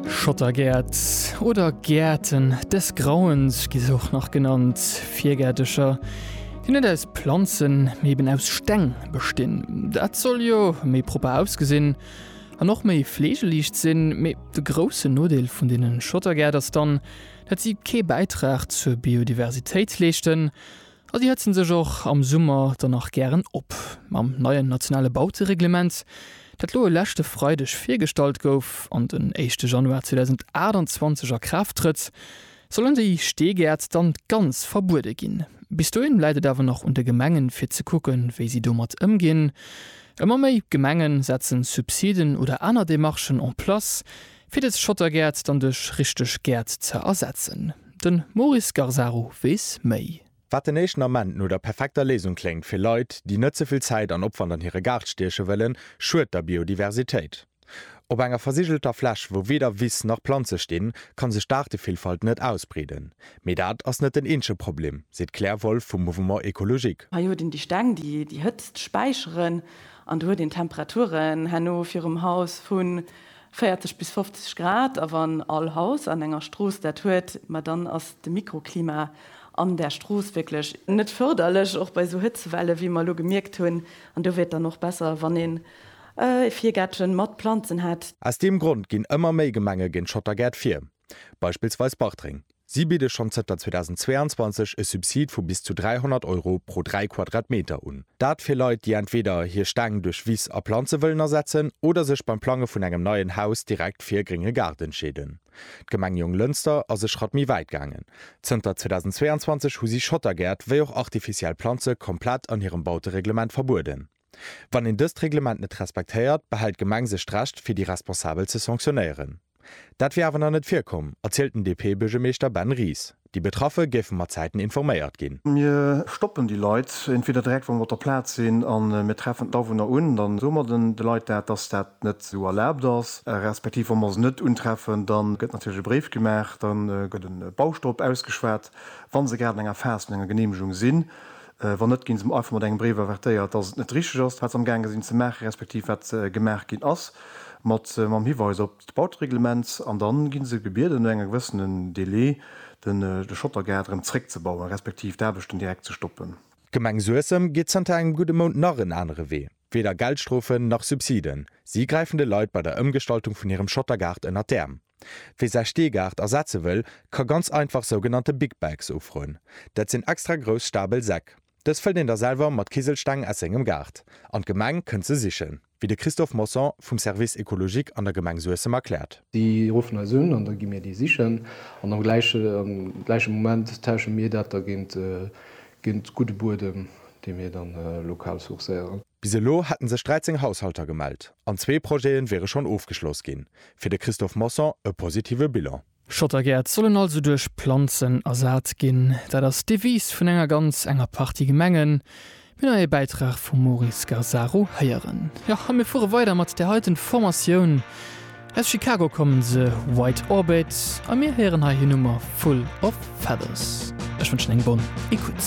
Schottergäert oder Gäerten des Grauens gi se och nach genannt, Virgäertercher, déi net aus Planzen, mee eben aus Steng bestinn. Dat soll jo méi propper ausgesinn an och méi fleegeliicht sinn. Mee de groussen Nodeel vun deene Schottergäert ass dann, dat si kee Bäitrag zur Biodiversitéit leeschten. A si hëtzen sech och am Summer dann nach gären op. Mam neien nationale Bautereglement, dat lo e leschte Freideg virgestallt gouf an den éischte Januar 2028 a Kraaft trëtt, sollen déi Steegäert dann ganz verbuede ginn. Bis dohin läit et awer nach un de Gemengen, fir ze kucken, wéi si domat ëmginn. Ëmmer méi Gemenge setze Subsiden oder aner Demarchen en place, Fir des Schottergäert dann duerch richteg Gäert ze ersetzen. Den Maurice Garzaro wees méi. Wat den éischten Ament no der perfekter Léisung kléngt fir Leit, déi net ze vill Zäit an Opwand an hire Gaart stieche wëllen, schued der Biodiversitéit. Op enger versigelter Fläch, wou weder Wiss nach Planze stinn, kann sech d'Aartevillfalt net ausbreeden. Mee dat ass net den eenzege Problem, seet d'Claire Wolff vum Mouvement Ecologique. Hei huet een déi Steng, déi déi Hëtzt späicheren, an do huet een Temperaturen herno virum Haus vun. 40 bis 50 Grad, a wann all Haus an enger Strooss dat huet, ma dann ass de Mikroklima an där Strooss wierklech net fërderlech, och bei esou Hëtzewelle wéi mer elo gemierkt hunn. An do wier et dann och besser, wann een e Virgäertchen mat Planzen hätt. Aus deem Grond ginn ëmmer méi Gemenge géint Schottergäert vir. Beispillsweis Bartreng. Si bidde schonn zënter 2022 e Subsid vu bis zu 300 Euro pro 3 Quadratmeter un. Dat fir Leit, déi entweder hir Steng duerch Wiss a Planze wëllen ersetzen oder sech beim Plange vun engem neien Haus direkt fir e grénge Gaart entscheeden. D'Gemeng Jonglënster ass e Schratt méi wäit gaangen. Zënter 2022 hu si Schottergäert wéi och artificiell Planze komplett an hirem Bautereglement verbueden. Wann een dëst Reglement net respektéiert, behält d'Gemeng sech d'Recht, fir déi Responsabel ze sanctionéieren. Dat wier awer nach net virkomm, erzielt den DP-Buergermeeschter Ben Ries. Déi Betraffe géife mat Zäiten informéiert ginn. Mir stoppen déi Leit entweder direkt, wa mer op der Plaz sinn, a mir treffen d'Awunner un. Da soe mer de Leit dat, dass dat net esou erlaabt ass. Respektiv wa mer se net untreffen, da gëtt natierlech e Bréif gemaach, da gëtt e Baustopp ausgeschwat, wa se grad an enger Phas vun enger Geneemegung sinn. Wann net, ginn se einfach mat engem Bréif avertéiert, dass et net richteg ass, wat se amgaange sinn ze maachen, respektiv wat gemaach ginn ass, mat mam Hiweis op d'Bautereglement. An da gi se gebieden, no engem gewëssene Delai de Schottergaart erëm zréckzebauen, respektiv d'Aarbechten direkt ze stoppen. D'Gemeng Suessem geet zanter engem gudde Mount nach en anere Wee. Weder Geldstrofen nach Subsiden, si gräifen de Leit bei der Ëmgestaltung vun hirem Schottergaart ënner d'Äerm. Wie säi Steegaart ersetze wëll, ka ganz einfach sougenannte Big Bags ofroen. Dat sinn extra grouss stabel Säck. Dës fëllt een da selwer mat Kiselsteng aus sengem Gaart an d'Gemeng kënnt se sichen, wéi de Christophe Mosson vum Service écologique an der Gemeng Suessem erkläert. Déi ruffen eis un an da gi mir déi sichen an am gläiche Moment tausche mir dat da géint gudde Buedem, dee mir da lokal sourcéieren. Bis elo hätte sech 13 Haushalter gemellt an zwee Projete wiere schonn ofgeschloss ginn. Fir de Christophe Mosson e positive Bilan. Schottergäert sollen also duerch Planzen ersat ginn. Dat ass d'Devise vun enger ganz enger Partie Gemengen. Mir neie Bäitrag vum Maurice Gazzaro héieren. Jo, a mir fuere weider mat där heiten Formatioun. Aus Chicago kommen se, White Orbit, a mir héieren hei hir Nummer Full of Feathers. Ech wënschen eng bonne Ecoute.